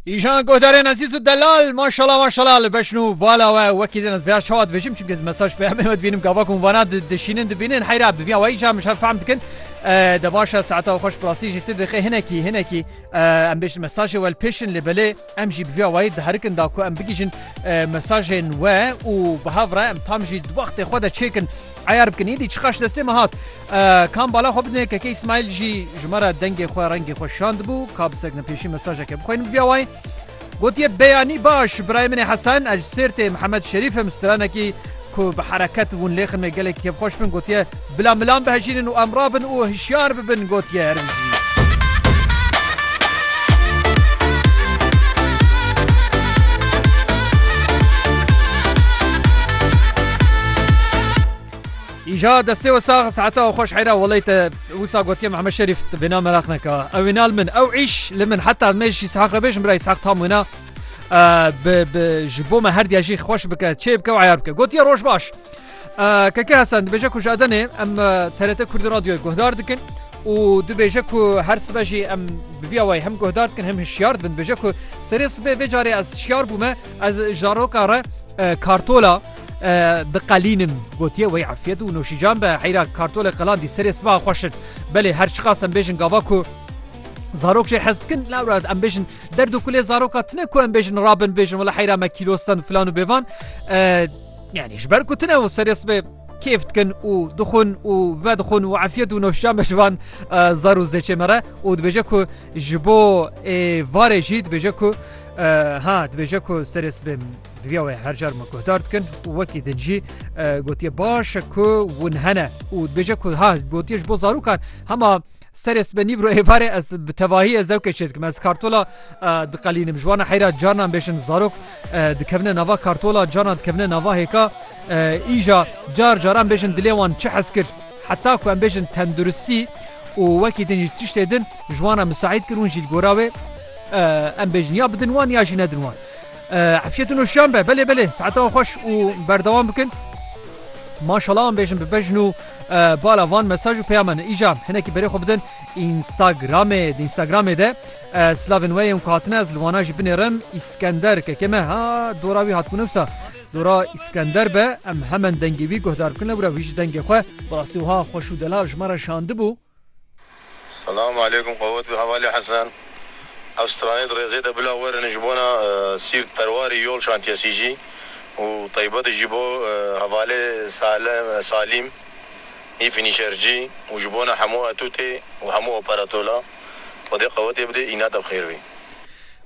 Îjan guhdarên ezîz û delal maşala maşala li beşn û bala we wekî din ez vêya çawa dibêjim çimkî ez mesaj peyamê me dibînim gava ku vana dişînin dibînin heyra bi vîya wayî ca min şer fehm dikin de başa saeta xweş bi rastî jî tu dixê hinekî hinekî em bêjin mesajê wel pêşin lê belê Em jî bi vî awayî diherikin da ku em bigihîjin mesajên we û bi hev re em tam jî di wextê xwe de çêkin eyar bikin. Îdî çiqas ji destê me hat. Kam bala xwe bidinê keke Îsmaîl jî ji me re dengê xwe rengê xwe şandibû ka bi seknepêşî mesajeke bixwînin bi vî awayî gotiye, Beyanî baş birayê min ê Hesen ez ji Sêrtê Mihemed Şerîf im stranekî ku bi hereket û lêximê gelekî kêfxweş bin gotiye, Bila milan bihejînin û em rabin û hişyar bibin gotiye Erinci. Îja destê we sax saeta xweş heyra welê te wisa gotiye Mehmed Şerîf vêna meraq neke. Ew wêna li min ew îş li min heta me jî sehaq re bêjim birayî sehaq tam wêna. ji bo me herdiya jî xweş bike çê bike û eyar bike gotiye roj baş. Keke Hasan dibêje ku ji Edenê em TRT Kurdî radyoyê guhdar dikin û dibêje ku her sibe jî em bi vî awayî hem guhdar dikin hem hişyar dibin dibêje ku serê sibê vê carê ez şiyar bûme ez ji roka re kartola diqelînin gotiye wey efiyet û noşîcan be heyra kartolê qelan dî serê siba xweşin belê her çiqasem bêjin gava ku zarok jê hezkin lawra em bêjin Derd û kulê zaroka tune ku em bêjin rabin bêjin wala heyra me kîlostan filan û bêvan yani ji ber ku tune û serê sibê kêf dikin û dixun û ve dixun û efiyet û noşcan be ji van zar û zêçê me re û dibêje ku ji bo ê varê jî dibêje ku ha dibêje ku serê sibê divya wê her car me guhdar dikin û wekî din jî gotiye baş ku hûn hene û dibêje ku ha gotiye ji bo zarokan hema serê sibe nîvro êvarê ez bi tevahî ez zewkê çê dikim ez kartola diqelînim ji wana heyra carnan bêşin zarok dikevine nava kartola carnan dikevine nava hêka îja car caran bêşin dilê wan çi hez kir heta ku em bêşin tenduristî û wekî din jî tiştê din ji wana misaîd kir hûn jî gora wê em bêjin ya bidin wan ya jî nedin wan Efşetun û şan be belê belê saeta wan xweş û berdewam bikin. Maşala an bêjin bi bejn û bala van mesaj û peyama ne îja hinekî berê xwe bidin Instagramê di Instagramê de silavên we yên ku hatine ez li wana jî binêrim Îskender kekê me ha dora wî hat ku newsa dora Îskender be em hemen dengê wî guhdar bikin lewra wî ji dengê xwe bi rastî wiha xweş û delal ji me re şandibû. Selam aleykum qewet bi hevalê Hesen ev stranê di rêzê de bila werin ji bona Sîrt perwarî yol şantiyesî jî û teybet ji bo hevalê Salîm yî fînîşercî û ji bona hemû etûtê û hemû operatola xwedê qewetê bidê îna te bi xêr bî.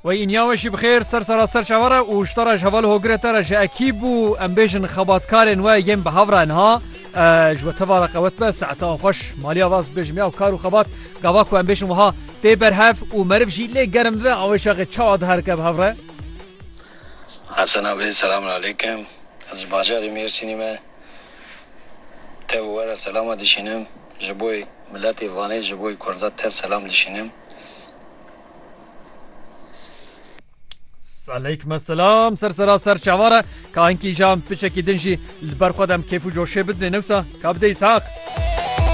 Wey inya we jî bi xêr ser sera ser çawa re û ji te re ji hevalê hogirê te re ji ekîb û em bêjin xebatkarên we yên bi hev re niha ji we tevara qewet be saete an xweş maliya vas bêjim ya kar û xebat gava ku em bêjin wiha tê berhev û meriv jî lê germ bibe awê şaxê çawa diherike bi hev re Hesen abi selamun aleykim ez ji bajarê Mêrsînê me tev û we re selama dişînim ji boy miletê Vanê ji boy kurda tev selam dişînim. Aleykum esselam ser sera ser çavara kankî jan piçekî din jî li ber xwe dem kêf û coşê bidinê newsa ka bidê îshaq.